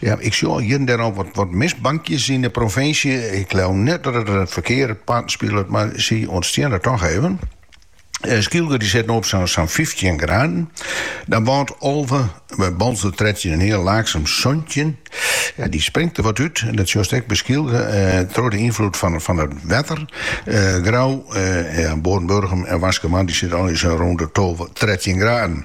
Ja, ik sjoch hjir en dêr al wat, wat mistbankjes yn de provinsje. Ik leau net dat it it ferkear parten spilet, mar sy ûntstiene der toch even. Eh, Skylge dy sit no op sa'n sa'n fyftjin graden. Dan Bant alve, by Boalsert trettjin en heal, Laaksum santjin. Ja, dy springt der wat út, dat sjochst ek by Skylge, eh, troch de ynfloed fan, fan it wetter. Eh, Grou, eh, ja, Boarn, Burgum en Waskemar, dy sitte allegear rûn de tolve, trettjin graden.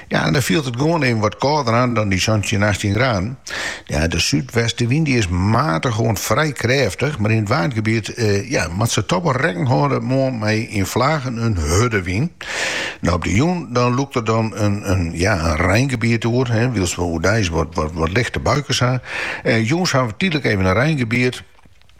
Ja, en dan fielt it gewoan even wat kâlder oan dan dy santjin, achttjin graden. Ja, de súdwestewyn dy is matich oant frij krêftich, mar yn it Waadgebiet ja, moat se toch wol rekken hâlde moarn mei yn flagen in hurde wyn. No op de jûn dan lûkt der dan in ja, in reingebiet oer, wylst we oerdeis wat lichte buikens ha. Jûns hawwe we tydlik even in reingebiet.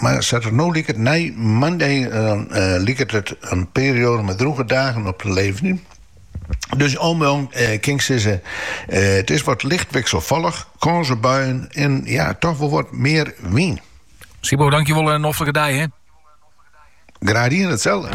Mar sa't it der no liket, nei moandei dan liket it in perioade mei drûge dagen op te leveren. Dus al mei al kin ik sizze, it is wat licht wikselfallich, kâns op buien en ja, toch wol wat mear wyn. Sibo, dankjewol en in noflike dei, hè. Graach dien, itselde.